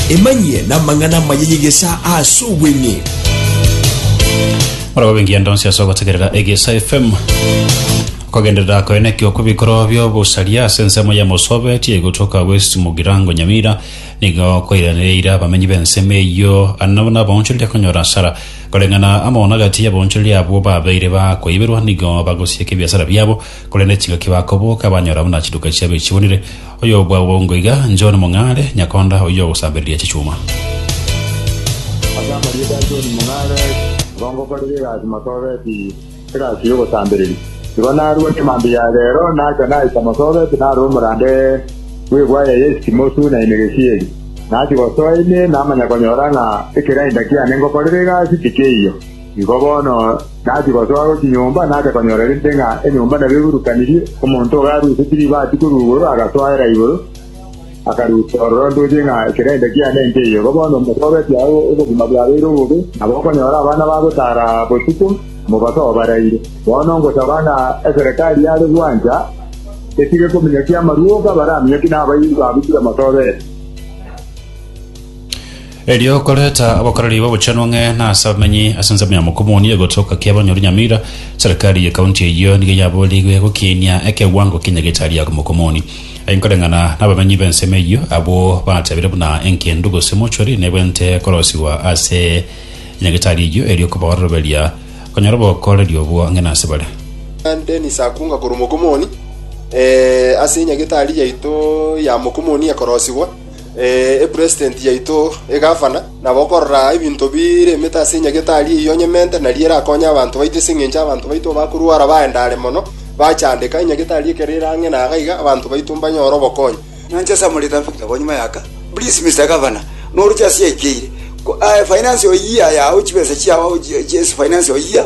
Emanyie n'amang'ana amaya y'egesaa ase obweng'e. Murababe engiya ndonsi ase ogotegerera egesa fm kogenderera koenekio kw'ebikorwa by'obosaria ase ensemo ya mosobe tiegotoka west mugirango nyamira nigo koiranereire abamenyi b'ensemo eyio anabo n'abaonchoreria konyora asara koreng'ana amono agati y'abaonchoreria abwo babeire bakoiberwa nigo bagosieka ebiasara biabo korende chingaki bakoboka banyora buna chiduka chiabo echibonire Oyobwagwa bongo iga, John Mong'are, nyakonda oyio ogosambereria chichuma. Ase amarieta a John Mong'are, Ngongokorera egasi Masoobeti, egasi y'ogosambereria. Igo narua chimambia ya reero nacha naika Masoobeti nare omorande bw'egwaya ya Esitimosu na Enegesieri. Nachia gosoa ime namanya konyora ng'a ekerainda kiane ngokorere egasi tikeiyo. Nigo bono nachia gosoa ase chinyomba, nacha konyorerente ng'a enyomba nabo eburukanirie, omonto iga arusetie ribaati korwa igoro, agasoera igoro, akarusia ororo ndoche ng'a ekerende kiane inche eyio. Igo bono mbosobetie agwo obogima bwabeire obobe, nabo okonyora abana bagotara botuko, mobasoe baraire. Bono ngosaba ng'a eserekari yare gwancha etige kominyokia amarwogo abare aminyokie na abairi baabo tibamasobete. Erio koreta abakoreri b'obochenu ang'e na ase abamenyi ase ensemo ya Mokomoni egotoka kia abanyori Nyamira. Serikari ye county eyio nigo yaboorigwe gokiinia ekewango kinya getari aa Mokomoni. Aye nkoreng'ana nabamenyi b'ensemo eyio abwo batebire buna engendu gose mortuary nebwente korosigwa ase nyagetari eyio erio kobaoroberia konyora obokoreri obwo ang'e na ase bare. Dennis Akunga korwa Mokomoni, Ase nyagetari yaito ya Mokomoni ekorosigwa. eh, epresident yaito egavana, na bokorora ebinto bire emete ase enyagetari eyio onyemente, nari erakonye abanto baito ase engencho abanto baito bakorwara baendare mono, bachandeka, enyagetari ekero ere ang'e na gaiga, abanto baito mbanyore obokonyi. Nyancha Samuel Ethan Victor ko nyuma yaka please Mister Governor noruche ase yaikeire ko aye finance o year yao chibesa chiao chi- chi- finance o year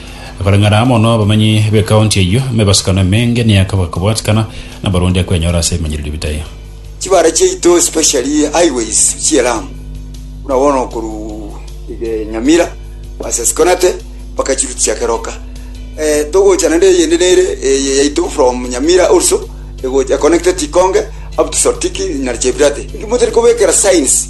Koreng'ana amo n'abamanyi b'ekaonti eyio, emebasukano emenge neyakaba kobwatikana, na abarundi akwenyora ase ebimanyererio bitayo. Chibara chiaito especially highways chie Lamu buna bono korwa Nyamira versus Konate mpaka chirutia keroka eh, togocha naende eyende nere eye yaito from Nyamira also egocha connected Ikonge up to Sortiki na Chepirate. Inki motari kobekera signs?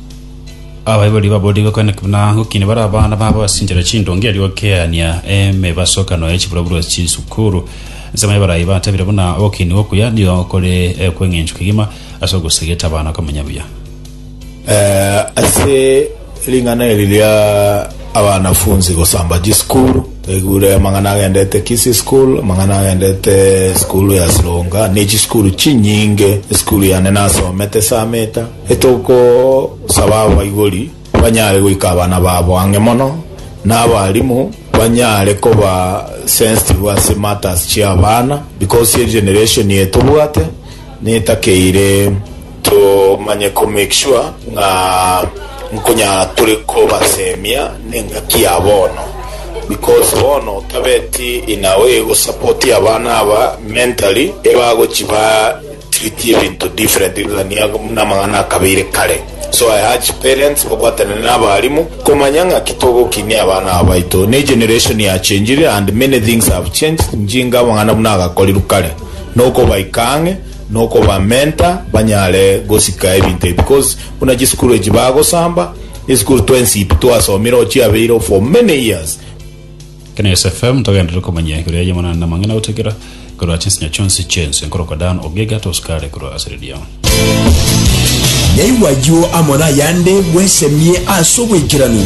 Abaibori baboorire gokwana buna gokina bare abana babo basinchera chindonge erio gokeania emebasokano ya chiburoburo chisukuru. Ensemo y'abarai batabire buna ogokini okuya nigo kore ekweng'enchwa kegima ase ogosegeta abana komenya buya. Ase ring'ana eri ria abanafunzi gosamba chisukuru, twaigure amang'ana agendete Kisii school, amang'ana agendete esukuru ya Sironga, ne chisukuru chinyinge. Esukuru yane nasomete Sameta. Etogosaba abaibori banyare goika abana babo ang'e mono, na abarimu banyare koba sensitive ase matters chi'abana, because eye generation eye tobwate netakeire tomanye ko make sure ng'a nkonyara tore kobasemia nengaki ya bono, because bono tabeti in a way gosapotia abana aba mentally, ebagochi ba Treat ebinto different gania buna amang'ana akabeire kare so I urge parents babwatane na abarimu komanya ng'aki togokinia abana aba baito ne generation ya changire and many things have changed njinga amang'ana buna agakorirwe kare nokobaika ang'e nokoba mentor banyare gosika ebinto ebi because buna chisukuru echi bagosamba esukuru twensi pi twasomire ochiabeire for many years Kenyatta FM togenderere komanya igoro ya Yemonani na amang'ana gotigera korwa chinsinya chionsi chi'ense nkorokwa Dan Ogega tosikare korwa ase redio. Naigwa ayio amo nayande bwesemie ase obwaikeranu.